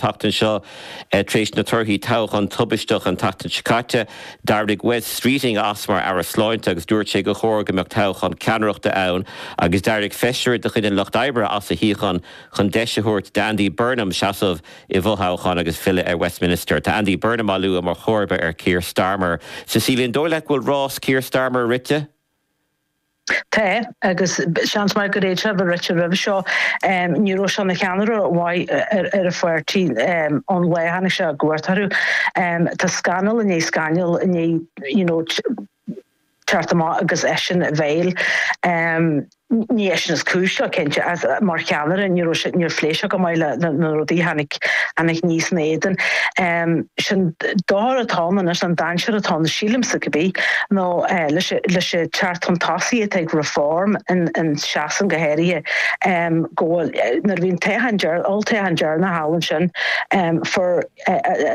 tseachtain seo. Tar éis na torthaí toghcháin tubaisteach an tseachtain seo caite, d'éirigh Wes Streeting as mar Aire Sláinte agus dúirt sé gur chóir go mbeadh toghchán ceannaireachta ann agus d'éirigh feisire de chuid an Lucht Oibre as a shuíochán chun deis a thabhairt d'Andy Burnham seasamh i bhfothoghchán agus filleadh ar Westminster. Tá Andy Burnham á lua mar chomharba ar Keir Starmer. Cecilia Ní Dhufaigh, An bhfuil rás Keir Starmer rite? Tá, agus seans maith gur fhéad sé a bheith rite roimhe seo. Ní raibh sé ina cheannaire mhaith ar a pháirtí ón lá a tháinig sé i gcumhacht orthu. Tá scannal i ndiaidh scannail i ndiaidh, you know, teacht amach agus eisean i bhfeighil. Ní eisean is cúis leo, cinnte, ach mar cheannaire ní raibh sé, níor phléigh sé go maith le na rudaí a tháinig. aníos ina éadan. Sé'n dochar atá ann anois, an dainséar atá ann, sílimse cibé, nó leis an teacht chun tosaigh atá ag Reform i Sasain go háirithe, go bhfuil, nuair a bhí an toghchán deir, olltoghchán deireanach thall ansin, fuair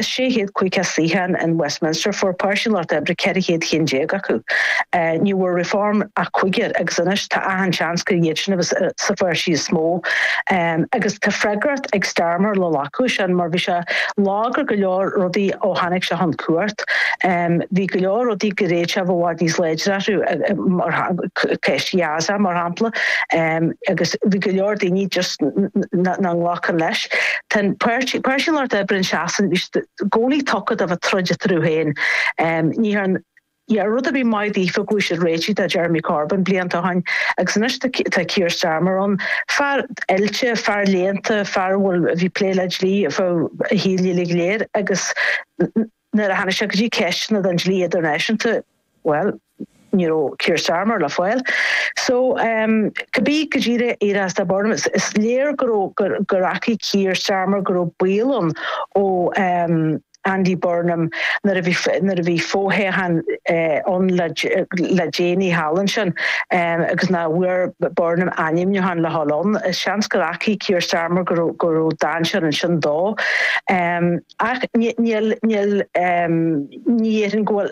650 suíochán in Westminster, fuair Páirtí an Lucht Oibre 400 ceann déag acu. Ní bhfuair Reform ach cúigear agus anois tá achan seans gur iadsan a bheas sa pháirtí is mó. Agus tá freagracht. ag Starmer le glacadh ansin mar bhí sé lag ar go leor rudaí ó tháinig sé chun cumhacht. Bhí go leor rudaí gur fhéad sé a bheith i bhfad níos láidre orthu mar ceist Ghaza mar shampla agus bhí go leor daoine just nach nglacann leis. Tá an páirtí Páirtí an Lucht Oibre i Sasain bhí i gcónaí tugtha do bheith ag troid eatarthu féin. Ní tharla rud ar bith maith daofa ó fuair siad réitithe de Jeremy Corbyn blianta ó shin agus anois tá Keir Starmer ann, fear oilte, fear léannta, fear a bhfuil, a bhí plé le dlí ar feadh a shaoil uilig go léir agus nuair a tháinig sé go dtí ceisteanna den dlí idirnáisiúnta, bhuel, ní raibh Keir Starmer le fáil. So, cibé caidé a tharlós do Burnham, is léir go raibh, gur, gur fhacaigh Keir Starmer go raibh baol ann ó. Andy Burnham, nuair a bhí fothoghchán ann le déanaí thall ansin agus nach bhfuair Burnham ainmniúchán le dhul ann, is seans gur fhacaigh Keir Starmer go raibh dainséar ansin dó. Ach níl, ní dhéarfainn go bhfuil.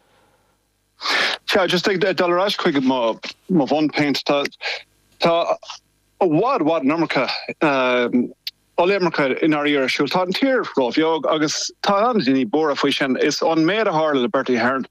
Sea, just ag dul ar ais chuig mo mo bhunphointe, tá tá i bhfad bhfad an iomarca ollimirce in Éirinn ar siúl. Tá an tír ró-bheag agus tá na daoine buartha faoi sin. Is an méid a tharla le Bertie Ahern,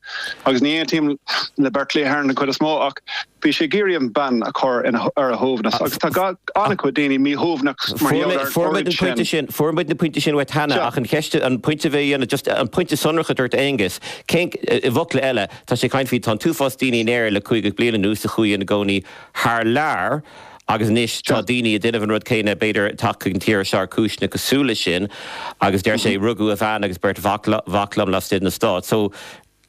agus ní aontaím le Bertie Ahern den chuid is mó, ach bhí sé ag iarraidh an bean a chur ina ar a shuaimhneas agus tá an-chuid daoine míshuaimhneach mar gheall ar Fuair muid an pointe sin, fuair muid na pointí sin uait cheana, ach an cheist, an pointe a bhí á dhéanamh, just an pointe sonrach a dúirt Aengus, I bhfocla eile, tá sé ag caint faoi, tá an t-uafás daoine in Éirinn le caoga bliain anuas a chuaigh ina gcónaí thar lear agus anois tá daoine a' déanamh an rud céanna, b'fhéidir, ag teacht chuig an tír seo ar chúiseanna cosúil leis sin. Agus deir sé, rugadh mo bhean agus beirt mhac liom laistigh de na Stáit. So,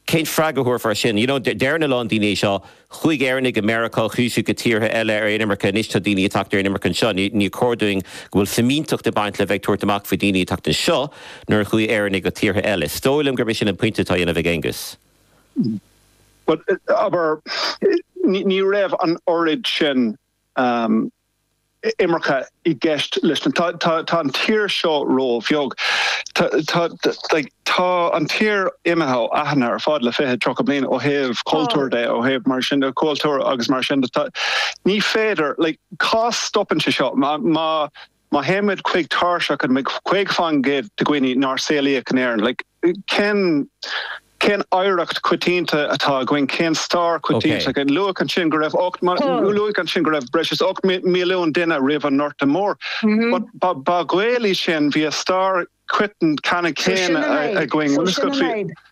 cén freagra a thabharfá air sin? You know, deireann a lán daoine é seo, Chuaigh Éireannaigh go Meiriceá, chuaigh siad go tíortha eile ar inimirce, anois tá daoine ag teacht ar inimirce anseo. Níor chóir dúinn go bhfuil fimínteacht ag baint le bheith ag tabhairt amach faoi daoine ag teacht anseo nuair a chuaigh Éireannaigh go tíortha eile. Is dóigh liom gurb é sin an pointe atá á dhéanamh ag Aonghus. Bhuel, abair, ní raibh an oiread sin imirce i gceist leis na. Tá an tír seo róbheag. Tá, tá, tá an tír imithe ó aithne ar fad le fiche, tríocha bliain ó thaobh cultúir de, ó thaobh mar sin de cultúir agus mar sin de. Ní féidir, cá stopann sé seo? Má. Má théimid chuig tairseach an 50% de dhaoine nár saolaíodh in Éirinn, like, cén, cén oidhreacht choitianta atá againn, cén stair choitianta againn? Luadh ansin go raibh ocht, luadh ansin go raibh breis is ocht milliún duine roimh an nGorta Mór. But ba Ghaeil iad sin, bhí an stair céanna againn.